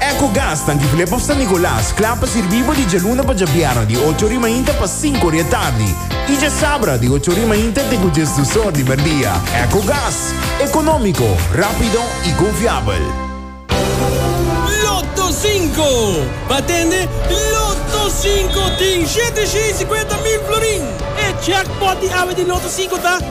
Ecogas ta difilé pa San Nicolas, kla pa sirbí bo di djaluna pa djabièrnè di ocho ori mainta pa sinku ori e tardi i djasabra di ocho ori mainta te ku djes dus or di merdia. Ecogas, ekonómiko, rápido i konfiabel. Lotto Sinko, Batende Lotto Sinko tin shete shen i sikuenta mil florin! E jackpot di awe di Lotto Sinko ta.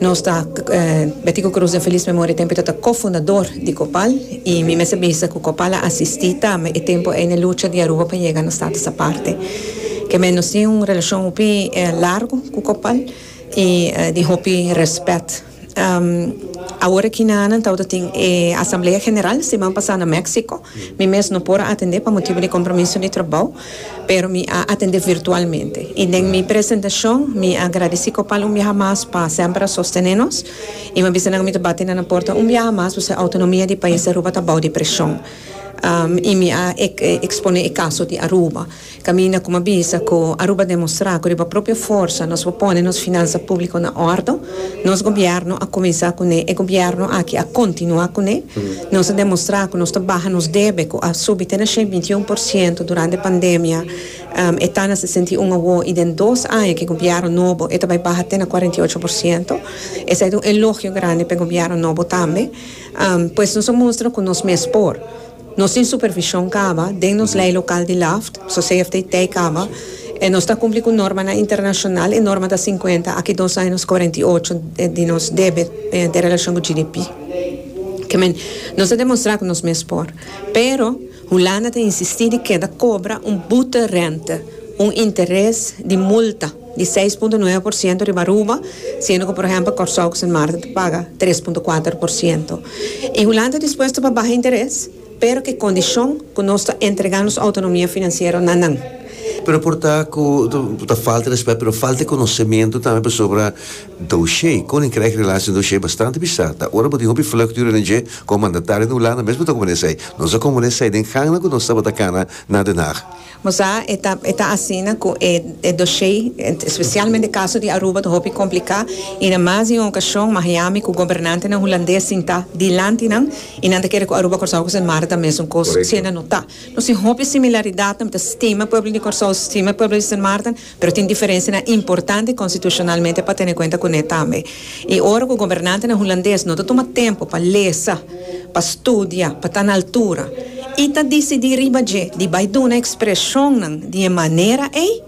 Nos ta Betty cu Cruz den feliz memoria tempo e ta ta co-fundador di Copal y mi mester bisa cu Copal a asisti tambe e tempo ey na lucha di Aruba pa yega na status aparte. Kemey nos tin un relacion hopi largo cu Copal y di hopi respet. Awor aki na nan tawata tin e asamblea general siman pasa na Mexico. Mi mes no por a atende pa motibo di compromiso di trabao. pero mi a atende virtualmente. I den mi presentacion mi a gradeci Copal un biaha mas pa semper a sostene nos i mi a bisa nan mi ta bati na nan porta un biaha mas pasobra autonomia di pais di Aruba ta bou di presion. I mi a expone e caso di Aruba caminda cu mi a bisa cu Aruba a demostra cu riba propio forsa nos por pone nos finansa publico na ordo. Nos Gobierno a cuminsa cune, e Gobierno aki a continua cune. Nos a demostra cu nos ta baha nos debe cu a subi te na shei binti un por ciento durante pandemia, e ta na sesenta i un awo y den dos aña cu e Gobierno nobo e ta bay baha te na cuarenta i ocho por ciento. Esey ta un elogio grandi pa e Gobierno nobo tambe. Pues nos a mustra cu nos mes por. Nos tin supervision kaba den nos lei lokal di Laft, so CFTT kaba e nos ta kumpli ku normanan internashonal, e norma ta sinkuenta, aki dos años kuarenta i ocho di nos debet den relashon ku GDP. Ke men, nos a demonstrá ku nos mes por. Pero, Hulanda ta insistí di keda kobra un bute rente, un interes di multa. di seis punto nuebe por siento riba Aruba, siendo cu por ehempel Corsou cu Sint Maarten ta paga tres punto kuater por siento. Y Hulanda ta dispuesto pa baha interes, pero cu e condicion cu nos ta entrega nos autonomia financiero na nan. Pero por ta cu ta falta respet, pero falta conocemento tambe pasobra doshé, Koninkrijk Relaties en Doshé, bastante bisa. Ta ora bo tin hopi vlucht di René Jay como mandatario den Hulanda mes bo ta como nesei. Nos a como nesei den gangnan cu nos tabata cana na Den Haag. Mosa e ta e ta asina cu e e doshey, especialmente e caso di Aruba ta hopi complica y na mas di un ocasion Miami cu gobernantenan Hulandes sinta dilanti nan y nan ta kere cu Aruba Corsou cu Sint Maarten ta mesun cos, siendo no ta. Nos tin hopi similaridad, nan ta stima pueblo di Corsou, stima pueblo di Sint Maarten, Pero tin diferensianan importante konstitushonalmente pa tene kuenta kuné tambe. I ora ku gobernantenan hulandes no ta tuma tempu pa lesa, pa studia, pa ta na altura i ta disidí riba dje di bai duna ekspreshonnan di e manera ei,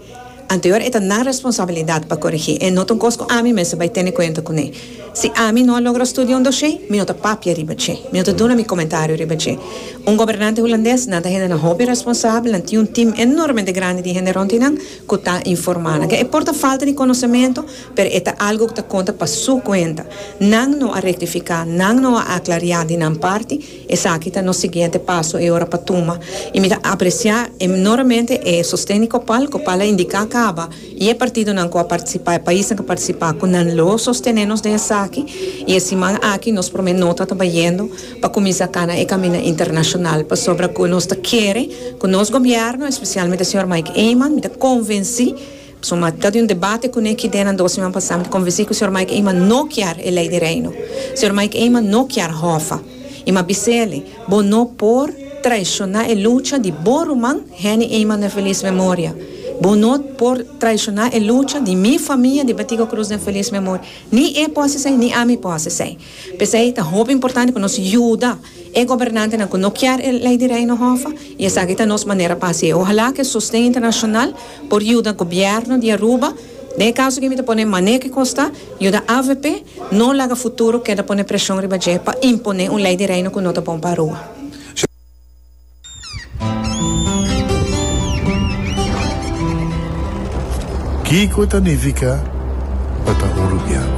anteor e ta nan responsabilidat pa korigí. E no ta un kos ku ami mester bai tene kuenta kuné. Si ami no a logra studia un dosé, mi no ta papia riba dje. Mi no ta duna mi komentario riba dje. Un gobernante hulandes, nan ta hendenan hopi responsabel, nan tin un tim enormemente grandi di hende rond di nan ku ta informá nan. Ke e por ta falta di konosementu, pero e ta algu ku ta konta pa su kuenta. Nan no a rektifiká, nan no a aklariá di nan parti, esaki ta nos siguiente paso e ora pa tuma. I mi ta apresiá enormemente e sosten di Copal. Copal a indiká kaba. I e partidonan ku a partisipá, e paisnan ku a partisipá, ku nan lo sostené nos den esaki. I e siman aki nos promé nota ta bayendo pa kuminsá kana e kaminda internashonal pasobra ku nos ta kere ku nos gobièrnu, espesialmente señor Mike Eman, mi ta konvensí, pasobra mi a ta di un debate kuné ki den nan dos siman pasá, mi ta konvensí ku señor Mike Eman no kier e Lei di Reino. Señor Mike Eman no kier Hòfa. I ma bis'eli, Bo no por traishoná e lucha di bo ruman Henny Eyman den felis memoria. Bo no por traishoná e lucha di mi famia di Betico Cruz den felis memoria. Ni e por hasi esei, ni ami por hasi esei. P'esei ta hopi importante ku nos yuda e gobernantenan ku no kier e Lei di Reino Hòf a, i esaki ta nos manera pa hasi. Ohalá ku e sosten internashonal Por yuda Gobierno di Aruba, den e caso aki mi ta pone mane cu costa, yuda avp no laga futuro keda pone presion riba dje pa impone un ley di Reino cu no ta bon pa Aruba. Kico ta nifica pa ta Uruguiano?